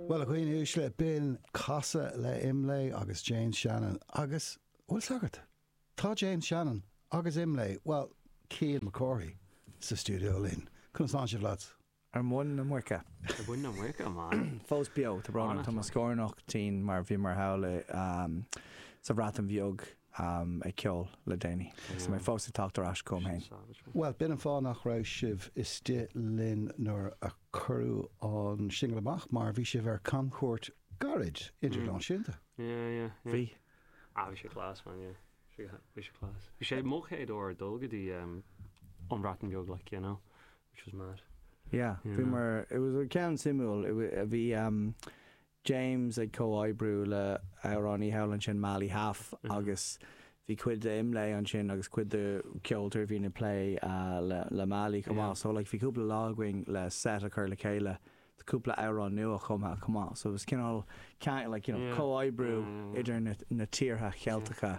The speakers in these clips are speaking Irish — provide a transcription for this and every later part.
Bhuel, a dhaoine uaisle, b'in casadh le Imlé agus James Shannon agus Uí Sagart. Tá James Shannon agus Imlé, bhuel, Cian Mac Cárthaigh, sa stiúideo linn. Conas tá sibh, lads? Ar mhuin na muice. Ar mhuin na muice, man. Fós beo, tá brón orm, tá mo scornach tinn mar bhí mé thall i, ehm, sa Bhreatain Bheag, ehm, ag ceol le déanaí. So tá mé fós ag teacht ar ais chugam féin. Bhuel, b'in an fáth nach raibh sibh istigh linn nuair a Cuireadh an singil amach mar bhí sibh ar camchuairt gairid idirnáisiúnta. Bhí. Ah, bhí sé class, man, yeah. Bhí sé class. Ba é mo chéad uair ag dul go dtí an Bhreatain Bheag, like, you know, which was mad. Yeah, bhíomar, it was ceann suimiúil, bhí, James ag comhoibriú le amhránaí thall ansin Mali Haf agus bhí cuid de Imlé ansin agus cuid de ceoltóirí a bhíonn ag plé le Mali chomh maith. So like bhí cúpla lá againn le set a chur le chéile do cúpla amhrán nua chumtha chomh maith. So it was cineál ceann like you know comhoibriú idir na na tíortha Cheilteacha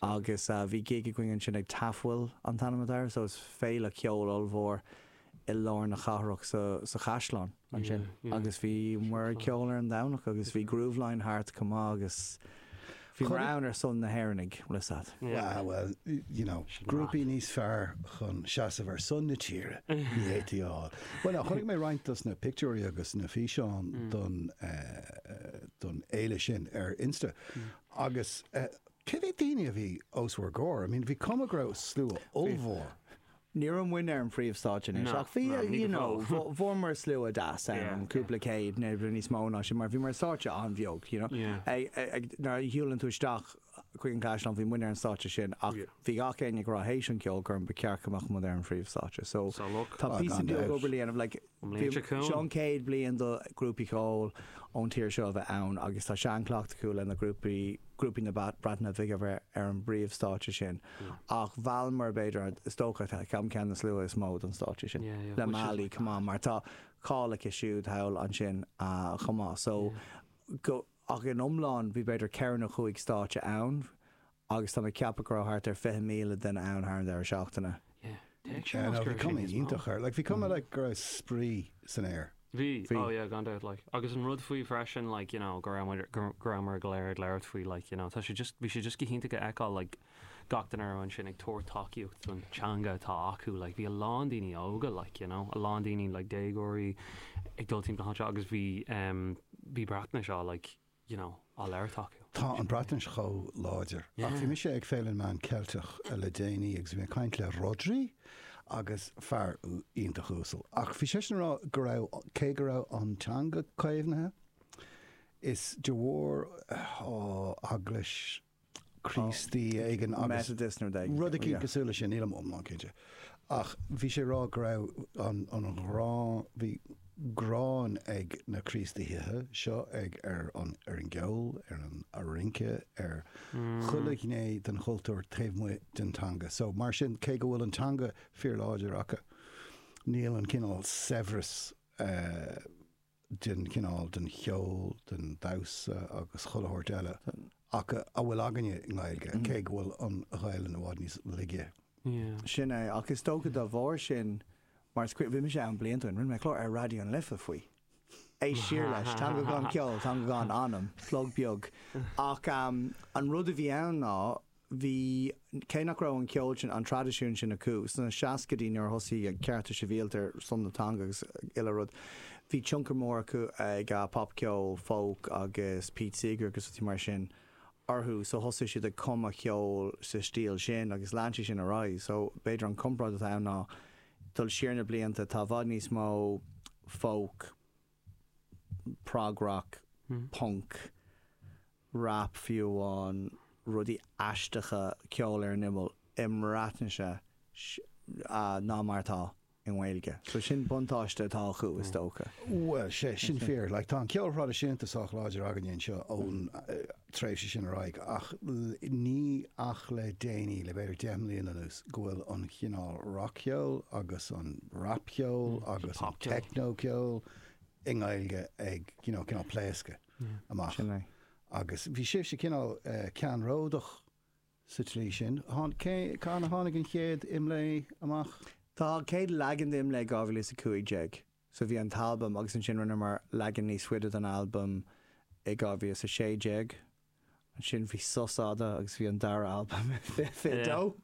agus bhí gig againn ansin ag Tafwyl an t-ainm atá air so is féile ceoil ollmhór i lár na cathrach sa chaisleán ansin agus bhí muid ag ceol ar an Domhnach agus bhí Grooveline thart chomh maith agus bhí muid ann ar son na hÉireannaigh, you know. Ah well, you know, grúpaí níos fearr chun seasamh ar son na tíre, ní fhéadfaí a fháil. Bhuel, chonaic mé roinnt dos na pictiúirí agus na físeáin don fhéile sin ar Insta agus cé mhéad duine a bhí os bhur gcomhair? I mean bhí cuma go raibh slua ollmhór. Ní raibh muinn ar an phríomhstáitse anois, ach bhí, you know, fuaireamar slua deas ann, cúpla céad, nó níos mó ná sin, mar bhí mar stáitse an-bheag, you know. Nuair a shiúlann tú isteach chuig an gCaisleán, bhí muinn ar an stáitse sin, ach bhí gach éinne ag rá théis an cheoil gur ba cheart go mbeadh muid ar an phríomhstáitse. So tá píosa beag obair le déanamh, like, An bhliain seo chugainn. Seo an chéad bhliain do ghrúpaí ceoil ón tír seo a bheith ann agus tá seanchleacht acu leis na grúpaí, grúpaí na Breataine Bige a bheith ar an bpríomhstáitse sin. Ach mheallamar b'fhéidir, is dócha, ceann ceann na slua is mó don stáitse sin, Yeah, yeah, le which is Mali, like chomh maith, mad. mar tá cáil aici siúd thall ansin chomh maith. So Yeah. go, ach in iomlán bhí b'fhéidir ceithre nó cúig stáitse ann. Agus tá mé ag ceapadh go raibh thart ar 20,000 duine ann thar an deireadh seachtaine. Yeah, déarfainn nach mór sin níos mó. Like bhí cuma like go raibh spraoi san aer. Bhí, oh yeah gan dabht like agus an rud faoi freisin like you know go raibh muid go raibh muid go léir ag labhairt faoi like you know tá sé just bhí sé just go hiontach a fheiceáil like gach duine a raibh ansin ag tabhairt tacaíocht don teanga atá acu like bhí a lán daoine óga like you know a lán daoine like déagóirí ag dul timpeall anseo agus bhí um, bhí Breatnais acu like you know, á labhairt acu. Tá an Bhreatnais chomh láidir. Ach bhí mise ag Féile na Meán Ceilteach le déanaí agus bhí mé ag caint le Rhodri agus is fear iontach uasal. Ach bhí seisean ag rá go raibh, cé go raibh an teanga caomhnaithe, is de bharr, oh, Eaglais, Críostaí éigin agus rud eicínt cosúil leis sin, nílim iomlán cinnte. Ach bhí sé ag rá go raibh an ghrá, bhí gráin ag na Críostaithe seo ar an gceol, ar an rince, ar chuile ghné den chultúr taobh amuigh den teanga. So mar sin, cé go bhfuil an teanga fíorláidir acu, níl an cineál saibhreas, den chineál, den cheol, den damhsa agus chuile shórt eile acu a bhfuil againne i nGaeilge, cé go bhfuil an Ghaelainn i bhfad níos laige. Sin é, ach is dócha dá bharr sin, mar is cuimhin, bhí mise ann blianta ó shin, rinne mé clár ar Raidió an Life faoi. Éist siar leis, Teanga gan Ceol, Teanga gan Anam, plug beag. Ach an rud a bhí ann ná, bhí, cé nach raibh an ceol sin, an traidisiún sin acu sna seascaidí nuair a thosaigh cearta sibhialta ar son na teanga agus uile rud, bhí tionchar mór acu ag popcheol, folk agus Pete Seeger agus rudaí mar sin orthu. So thosaigh siad ag cumadh ceoil sa stíl sin agus lean sé sin ar aghaidh. So b'fhéidir an comparáid atá ann ná dul siar na blianta, tá i bhfad níos mó folk, prog-rock, punk, rap fiú amháin, rudaí aisteacha, ceol ar an imeall, i mBreatnais ná mar atá i nGaeilge. So sin buntáiste atá acu, is dócha. Bhuel, tá sé sin fíor. Like, tá an ceol traidisiúnta sách láidir againne anseo ón, tréimhse sin ar aghaidh ach ní ach le déanaí, le b'fhéidir deich mbliana anuas, go bhfuil an chineál rac-cheoil agus an rapcheol agus an teicneocheol i nGaeilge ag you know cineál pléascadh amach. Agus bhí sibhse cineál ceannródach sa tslí sin. Cathain a tháinig an chéad Imlé amach? Tháinig an chéad leagan d'Imlé 2015 So bhí an t-albam agus ansin rinneamar leagan níos fuide den albam i 2016. Ansin bhí sos fhada agus bhí an dara albam i 2022.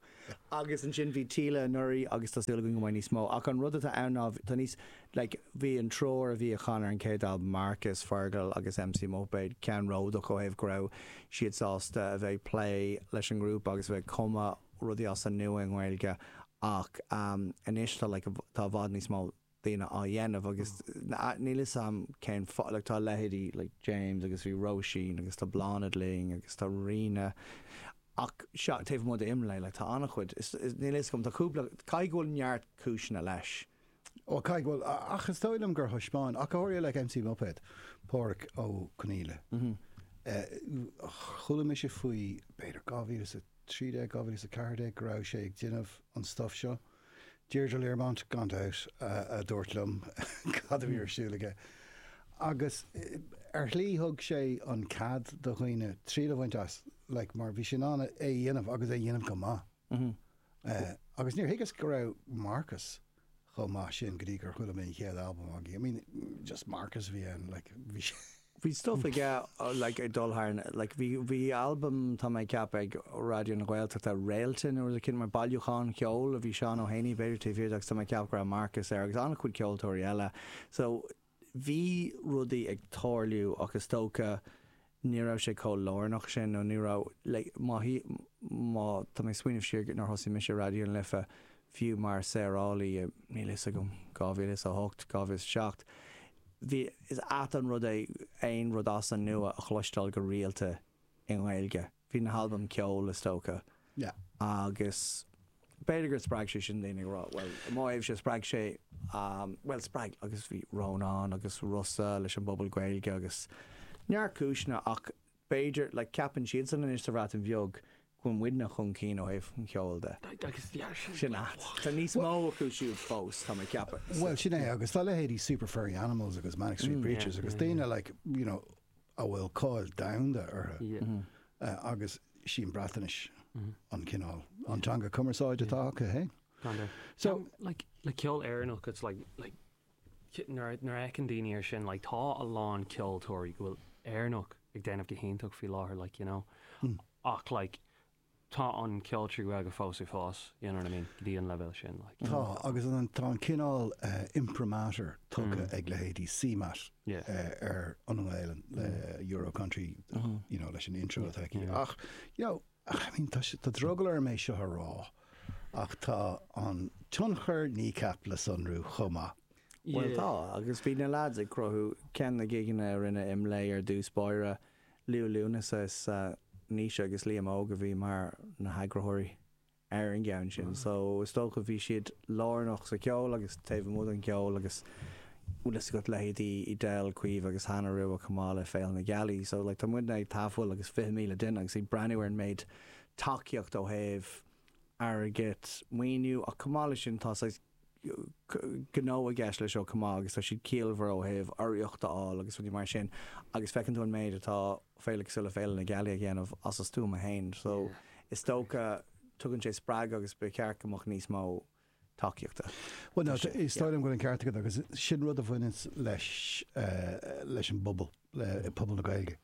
Agus ansin bhí Fáilte Isteach anuraidh agus tá súil againn go mbeidh níos mó. Ach an rud atá ann ná tá níos, like, bhí an triúr a bhí a chan ar an chéad albam, Marcus, Fergal agus MC Muipéad, ceannródach ó thaobh go raibh siad sásta a bheith ag plé leis an ngrúpa agus a bheith ag cumadh rudaí as an nua i nGaeilge ach anois tá, like, tá i bhfad níos mó. daoine á dhéanamh agus níl 'fhios a'm cén fáth, like tá leithéidí like James agus bhí Róisín agus tá Bláthnaid linn agus tá Ríona ach seo, taobh amuigh d'Imlé like tá an-chuid, is níl 'fhios a'm, tá cúpla, caithfidh go bhfuil neart cúiseanna leis. Ó caithfidh go bhfuil, ach is dóigh liom gur thaispeáin, ach go háirithe like MC Muipéad, Páraic Ó Conghaile, chuala mise faoi b'fhéidir 2013, 2014 go raibh sé ag déanamh an stuif seo. Deirdre Learmont, gan dabht, a dúirt liom cad a bhí ar siúl aige. Agus ar shlí thug sé an cead do dhaoine triail a bhaint as like mar bhí sé in ann é a dhéanamh agus é a dhéanamh go maith. Agus níor thuigeas go raibh Marcus chomh maith sin go dtí gur chuala mé an chéad albam agaibh. I mean just Marcus a bhí ann like bhí sé Bhí stuff aige, like, ag dul thart, like, bhí, bhí album, tá mé ag ceapadh, ag Raidió na Gaeltachta, Réalta nó rud eicínt mar bailiúchán ceoil a bhí Seán Ó hÉanaí b'fhéidir taobh thiar de agus tá mé ag ceapadh go raibh Marcus air agus an-chuid ceoltóirí eile. So, bhí rudaí ag tarlú ach is dócha ní raibh sé chomh lárnach sin nó ní raibh, like, má, má tá mé ag smaoineamh siar nuair a thosaigh mise Raidió na Life, Fiú mar saorálaí i, níl a fhios agam, 2008, 2007, bhí, is ait an rud é aon rud as an nua a chloisteáil go rialta i nGaeilge. Bhí na halbaim Ceol, is dócha. Agus b'fhéidir gur spreag sé sin daoine ag rá, bhuel, i mo thaobhse, spreag sé, bhuel, spreag, agus bhí Rónán agus Rossa leis an bPuball Gaeilge agus neart cúiseanna ach B'fhéidir, like, ceapann siadsan anois sa Bhreatain Bheag go bhfuil muidne chun cinn ó thaobh an cheoil de. Sin a, tá níos mó acu siúd fós, tá mé ag ceapadh. Bhuel, sin é, agus tá leithéidí Super Furry Animals agus Manic Street Preachers agus daoine, like, you know, a bhfuil cáil domhanda orthu agus sí an Bhreatnais an cineál, an teanga cumarsáide atá acu, hey? So, like, le ceol Éireannach, it's like, like, Nuair a fheiceann daoine air sin, like, tá a lán ceoltóirí go bhfuil Éireannach ag déanamh go hiontach faoi láthair, like, you know, ach, like, tá an ceol trí Ghaeilge fós ag fás, you know what I mean, go dtí an leibhéal sin, like. Tá, agus tá an cineál imprimatur tugtha ag leithéidí CMAT ar an nGaelainn le Euro Country, you know, leis an intro atá aici. Ach, you know, I mean, tá drogall orm é seo a rá. Ach tá an tionchar Kneecap le sonrú chomh maith. Bhuel, tá, agus bhí na leaids ag cruthú ceann de na gigeanna a rinne Imlé ar dtús báire, Liú Lúnasa is ea Naoise agus Liam Óg a bhí mar na heagraitheoirí ar an gceann sin, so is dócha bhí siad lárnach sa cheol agus taobh amuigh den cheol agus bhfuil fhios agat leithéidí Edel, Caoimhe agus Hannah Rua chomh maith le Féile na Gealaí, so like tá muidne ag tafhill agus fiche míle duine agus ag breathnú ar an méid tacaíocht ó thaobh airgid, maoiniú, ach chomh maith leis sin tá saghas gnó i gceist leis seo chomh maith agus tá siad ciallmhar ó thaobh urraíocht a fháil agus rudaí mar sin agus feiceann tú an méid atá féile cosúil le Féile na Gealaí a dhéanamh as a stuaim fhéin so is dócha tugann sé spreagadh agus ba cheart go mbeadh níos mó tacaíochta. Bhuel is dóigh liom go bhfuil an ceart agat agus sin rud a bhaineanns leis, leis an bpobal, le pobal na Gaeilge.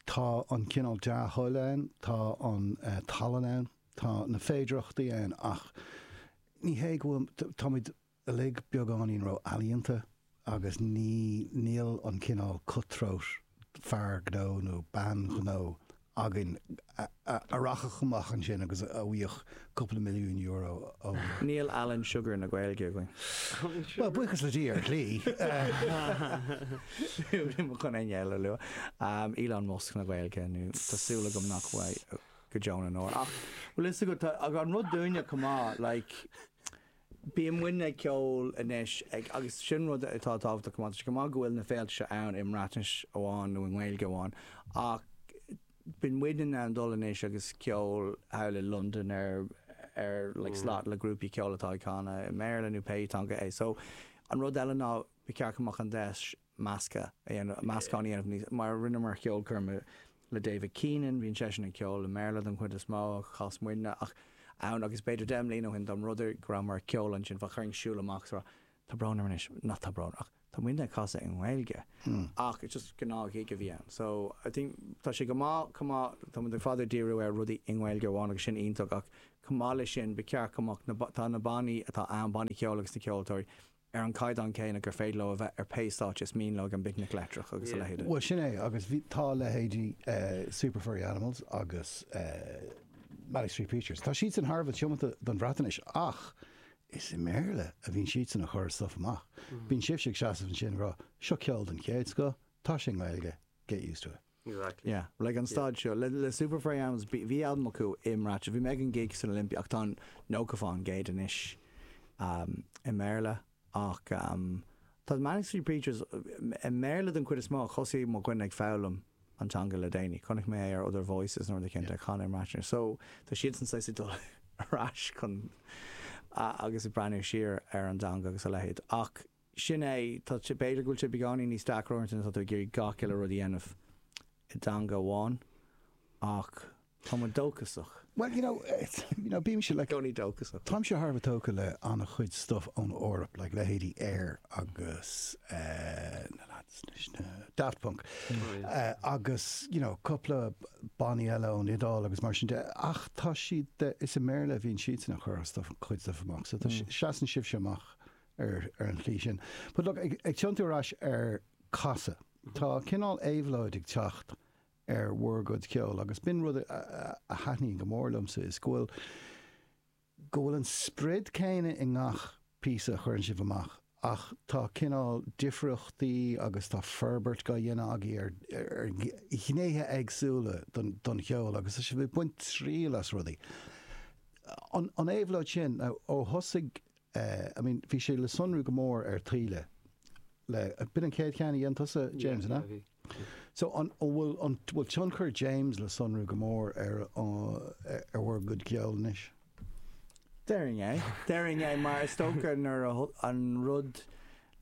Tá an cineál dea-thoil ann, tá an tallann ann, tá na féidearthachtaí ann ach ní hé go bhfuil, táimid uilig beagáinín ró-ealaíonta Agus ní, níl an cineál cut throat fear gnó nó bean ghnó againn a rachadh amach ansin agus a bhfaigheadh cúpla milliún euro ó. Níl Alan Sugar na Gaeilge againn. Bhuel, buíochas le Dia, ar shlí. Níl mé chun éinne eile a lua. Elon Musk na Gaeilge nó tá súil agam nach bhfuil go deo na ndeor. Ach bhfuil fhios agat, tá an rud dúinne chomh maith, like, Bíonn muidne ag ceol anois ag, agus sin rud atá tábhachtach chomh maith. Tá sé go maith go bhfuil na féilte seo ann i mBreatnais amháin nó i nGaeilge amháin ach bíonn muidne in ann dul anois agus ceol thall i Londain ar ar like slot le grúpaí ceoil atá ag canadh i mBéarla nó pé teanga é. So an rud eile ná ba cheart go mbeadh an deis measctha a dhéanamh, meascán a dhéanamh níos mó. Rinneamar ceolchoirm le David Keenan, bhíonn seisean ag ceol i mBéarla don chuid is mó, chas muidne ann agus b'fhéidir deich mbliana ó shin dá mba rud é go rabhamar ag ceol ansin bheadh daoine ag siúl amach so tá brón orm anois, ní tá brón ach tá muidne ag casadh i nGaeilge ach it's just gnáth ghig a bhí ann so I think tá sé go maith chomh maith tá muid le fada ag díriú ar rudaí i nGaeilge amháin agus sin iontach ach chomh maith leis sin ba cheart go mbeadh na tá na bannaí atá ann bannaí ceoil agus na ceoltóirí ar an gcaighdeán céanna gur féidir leo a bheith ar pé stáitse is mian leo ag an bPicnic Leictreach agus a leithéid. Bhuel, sin é, agus bhí, tá leithéidí Super Furry Animals agus Manic Street Preachers, tá siadsan thar a bheith tiomanta don Bhreatainis ach is i mBéarla a bhíonn siadsan ag cur stuif amach. Bíonn sibhse ag seasamh ansin ag rá, seo ceol den chéad scoth, tá sé i nGaeilge, get used to it. Exactly. Yeah, like ag an staid seo, le, le Super Furry Animals, bhí, bhí albam acu i mBreatnais, bhí mé ag an gig san Olympia, ach tá nócha fán gcéad anois, um, i mBéarla, ach, um, tá Manic Street Preachers, i, i mBéarla den chuid is mó, thosaigh mo dhuine ag foghlaim an teanga le déanaí, chonaic mé é ar Other Voices nó rud éicint ag canadh i mBreatnais, so tá siadsan saghas ag dul ar ais chun, a, agus ag breathnú siar ar an dteanga agus a leithéid, ach. Sin é. Tá, b'fhéidir go bhfuil sé beagáinín níos deacra uaireanta nuair atá tú ag iarraidh 'chuile rud a dhéanamh i dteanga amháin ach tá muid dóchasach. Bhuel, you know, you know, bímse, like, gcónaí dóchasach. Táimse thar a bheith tógtha le an-chuid stuff ón Eoraip, like, leithéidí Air agus eh na lads leis na, Daft Punk, eh agus, you know, cúpla banna eile ón Iodáil agus mar sin de ach tá siad de, is i mBéarla a bhíonn siadsan a' chur a' stuff, cuid stuff amach so tá, seasann sibhse amach ar an tslí sin. But look, ag ag tiontú ar ais ar Casadh, tá cineál éabhlóid ag teacht ar bhur gcuid ceoil agus b'in rud a a thaitníonn go mór liomsa is go bhfuil go bhfuil an sprid céanna i ngach píosa a chuireann sibh amach ach tá cineál difríochtaí agus tá forbairt á dhéanamh agaibh ar ar ghnéithe éagsúla don don cheol agus tá sibh ag baint triail as rudaí. An an éabhlóid sin, now, ó thosaigh I mean, bhí sé le sonrú go mór ar Taoille le, b'in an chéad cheann a dhein tusa, James, an ea? Yeah, yeah, bhí, bhí. So, an bhfuil, an bhfuil tionchar James le sonrú go mór ar, ar bhur gcuid ceoil anois? Déarfainn é, déarfainn é, mar is dócha nuair a, an rud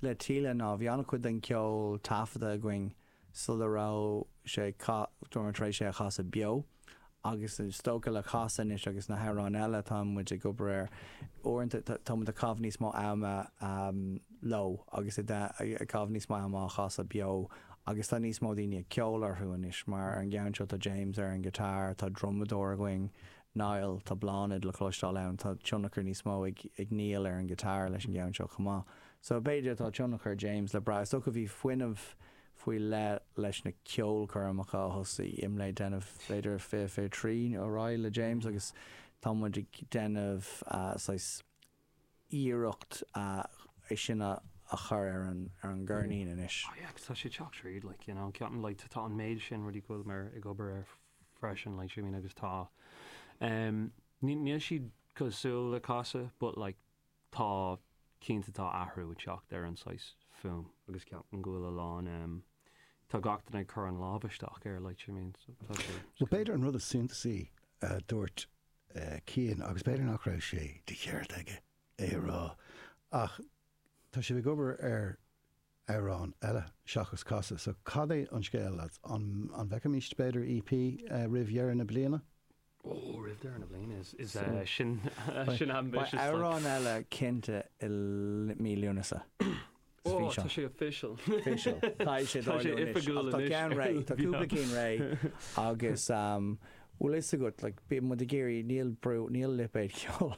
le Taoille ná bhí an-chuid den cheol taifeadta againn sula raibh sé casta, nó tar éis é a chasadh beo, agus is dócha le Casadh anois agus na hamhráin eile atá muid ag obair ar, uaireanta tá muid ag caitheamh níos mó ama leo agus ag caitheamh níos mó ama á chasadh beo agus tá níos mó daoine ag ceol orthu anois, mar ar an gceann seo tá James ar an ngiotár, tá drumadóir againn, Niall, tá Bláthnaid le cloisteáil ann, tá tionchar níos mó ag Neil ar an ngiotár leis an gceann seo chomh maith. So b'fhéidir tá tionchar James le brath. Is dócha bhí fuinneamh faoi leith leis na ceolchoirmeacha a thosaigh muid ag déanamh b'fhéidir fiche fiche trí ar aghaidh le James agus tá muid ag déanamh saghas iarrachta é sin a chur ar an ar an gceirnín anois. Oh yeah agus tá sé teacht tríd like you know ceapaim like tá an méid sin rudaí go bhfuil muid ag obair ar freisin like you mean agus tá um, níl siad cosúil le Casadh but like tá, cinnte tá athrú ag teacht ar an saghas fuaim agus ceapaim go bhfuil a lán, tá gach duine ag cur an lámh isteach air like do you know what I mean so tá sé, Bhuel, b'fhéidir an rud is suntasaí a dúirt Cian, agus b'fhéidir nach raibh sé de cheart aige é a rá, ach tá sibh ag obair ar amhráin eile seachas Casadh so cad é an scéal lads, an bhfeicfimis b'fhéidir EP roimh dheireadh na bliana? Beidh amhrán eile cinnte i mí Lúnasa. Tá sé official. Tá sé oifigiúil anois. Tá ceann réidh, tá cúpla cinn réidh agus bhfuil fhios agat, like, bíonn muid ag iarraidh, níl brú, níl lipéad ceoil.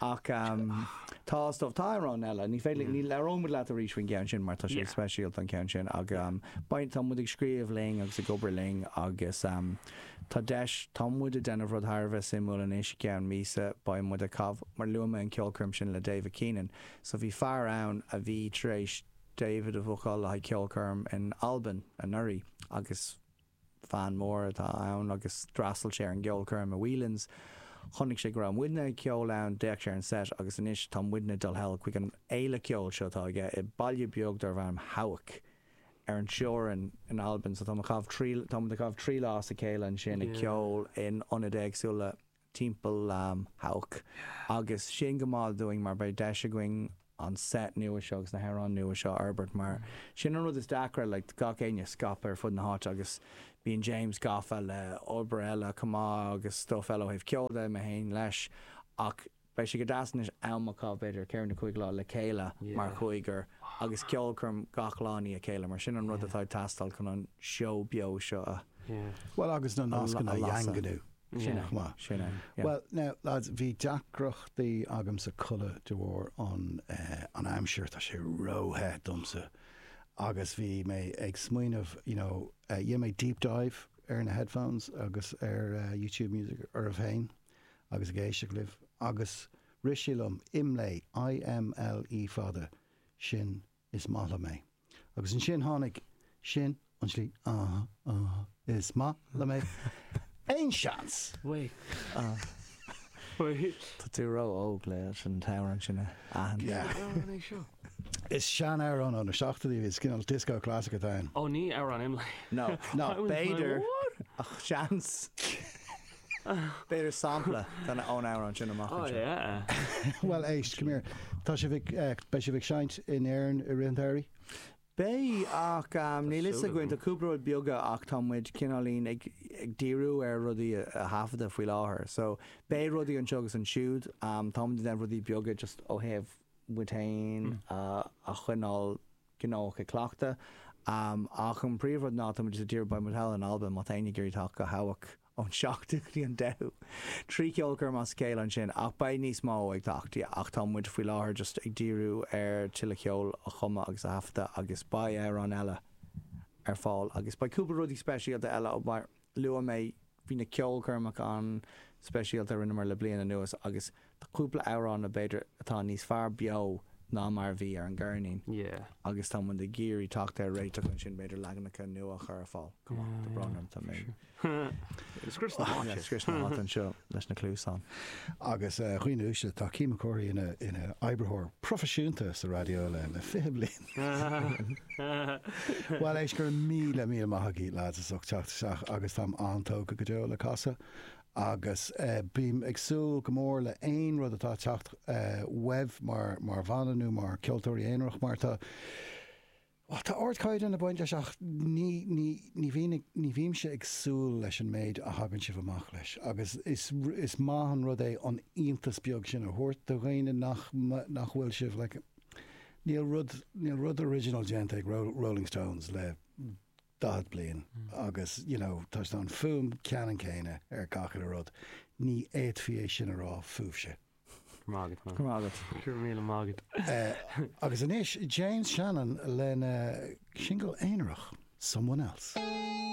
Ach tá, is dócha, tá amhráin eile. Ní féidir, ní, labhróimid leat arís faoin gceann sin mar tá sé speisialta an ceann sin ach beidh, tá muid ag scríobh linn agus ag obair linn agus tá deis, tá muid ag déanamh rud thar a bheith suimiúil anois, i gceann míosa beidh muid ag caith, mar luaigh mé an ceolchoirm sin le David Keenan, so bhí fear ann a bhí tar éis David a bhookáil le haghaidh ceolchoirm in Albain anuraidh agus. Fan mór atá ann agus d'fhreastail sé ar an gceolchoirm i Whelan's. Chonaic sé go raibh muidne ag ceol ann, d'fhéach sé ar an seit agus anois tá muidne dul sall chuig an fhéile ceoil seo atá aige i baile beag darb ainm Hawick, ar an teorainn in Albain. So táimid ag caitheamh trí lá as a chéile ansin ag ceol in ionaid éagsúla timpeall Hawick agus sin go maith dúinn mar beidh deis againn an set nua seo agus na hamhráin nua seo a fhorbairt mar sin an rud is deacra le gach éinne scaipthe ar fud na háite agus bíonn James gafa le obair eile chomh maith agus stuff eile ó thaobh ceoil de, mé féin leis ach beidh sé go deas anois am a chaitheamh b'fhéidir ceithre nó cúig lá le chéile mar chúigear agus ceolchoirm gach lá i ndiaidh a chéile mar sin an rud atá ag teastáil chun an seó beo seo a Bhuel agus na nascanna a dhaingniú. Sin é. Maith. Sin é. Yeah. Bhuel, now, lads, bhí deacrachtaí agamsa codladh de bharr an, eh, an aimsir, tá sé róthe domsa. Agus bhí mé ag smaoineamh, you know, eh, chuaigh mé deep dive ar na headphones agus ar eh, YouTube Music oraibh féin agus ag éisteach libh. Agus rith sé liom, IMLÉ, I-M-L-E fada, sin Is maith liom é. Agus ansin tháinig sin, an sliocht, Aaha, aaha, is maith liom é. Aon seans? Wait. Tá tú ró-óg le an t-amhrán sin a aithint. Cén amhrán é seo? Is sean-amhrán ó na seachtóidí, is cineál disco classic atá ann. Ó ní amhrán IMLÉ. No. No. B'fhéidir, ach seans. B'fhéidir sampla ón amhrán sin amach anseo. Bhuel éist, come here, tá sibh ag, beidh sibh ag seinnt in Éirinn i rith an tsamhraidh? Beidh ach níl 'fhios againn, tá cúpla rud beag ach tá muid cineáilín ag díriú ar rudaí a thaifeadadh faoi láthair so beidh rudaí anseo agus ansiúd, tá muid ag déanamh rudaí beaga just ó thaobh muid féin a choinneáil gnóthach ag cleachtadh ach an príomhrud ná tá muid just ag díriú beidh muid thall in Albain, má tá éinne ag iarraidh teacht go Hawick. ón seachtú go dtí an deichiú. Trí cheolchoirm as a chéile ansin, ach beidh níos mó ag teacht, ach tá muid faoi láthair just ag díriú ar tuilleadh ceoil a chumadh agus a thaifeadadh agus beidh amhráin eile ar fáil agus beidh cúpla rudaí speisialta eile mar luaigh mé, bhí na ceolchoirmeacha an-speisialta a rinneamar le bliain anuas agus Tá cúpla amhrán b'fhéidir atá níos fearr beo ná mar a bhí ar an gceirnín agus tá muid ag iarraidh teacht ar réiteach ansin, b'fhéidir leaganacha nua a chur ar fáil. Tá brón orm, tá mé ag scrios na háite anseo leis na cluasáin. Agus dhaoine uaisle, tá Cian Mac Cárthaigh ina oibritheoir proifisiúnta sa raidió le 20 bliain. Bhuel, éist, go raibh míle míle maith agaibh, lads, as ucht teacht isteach agus táim an-tógtha go deo le Casa Agus bím ag súil go mór le haon rud atá ag teacht uaibh mar bhanna nó mar ceoltóirí aonarach mar tá tá ardchaighdeán ag baint leis ach ní ní ní bhíonn ag ní bhímse ag súil leis an méid a thagann sibh amach leis agus is is maith an rud é an iontas beag sin a thabhairt do dhaoine nach nach bhfuil sibh like níl rud níl rud original déanta ag Rolling Stones le 40 bliain agus, you know, tá sé an fuaim ceannann céanna ar gach uile rud. Ní fhéadfaí é sin a rá fúibhse. Go raibh maith agat man. Go raibh maith agat. Go raibh míle maith agat. Agus anois James Shannon lena single aonarach, Someone Else.